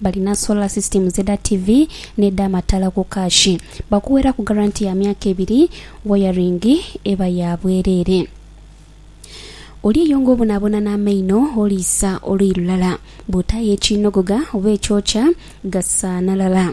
Balina solar systems edha TV n'edha mataala ku kaashi. Bakuweraku garanti ya myaka ebiri, wayaringi eba ya bwereere. Oli eyo ng'obonaabona n'amaino, oliisa oluyi lulala. Bw'otaayo ekiinogoga oba ekyokya, gasaanalala.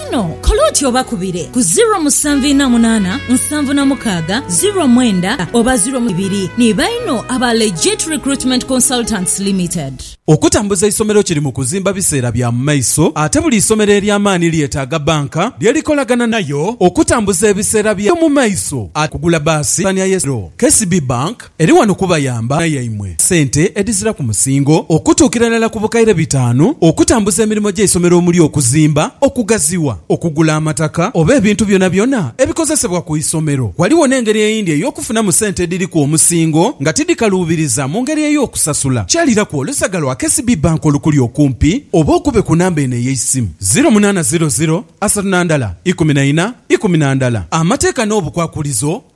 Kano kole oti obakubire ku ziro musanvu ina munana nsanvu na mukaaga ziro mwenda oba ziro ibiri ni baino aba Legit Recruitment Consultants Limited. Okutambuza eisomero kiri mu kuzimba biseera bya mu maiso ate buli isomero ery'amaani lyetaaga banka lye likolagana nayo okutambuza ebiseera byayo mu maiso ate kugula baasi. Pulaani ya y'essomero, KCB Bank. Eri wano kubayamba na yaimwe sente edhiziraku musingo okutuukira irala ku bukaire bitaanu okutambuza emirimo gy'eisomero omuli okuzimba, okugaziwa, okugula amataka oba ebintu byonabyona ebikozesebwa ku isomero. Ghaligho n'engeri eyindi ey'okufunamu sente edhiriku omusingo nga tidhikaluubiriza mu ngeri ey'okusasula kyaliraku olusaga lwa KCB Bank olukuli okumpi oba okube ku namba eno ey'eisimu, ziro munaana ziro ziro asatu na ndala ikumi na ina ikumi na ndala. Amateeka n'obukwakulizo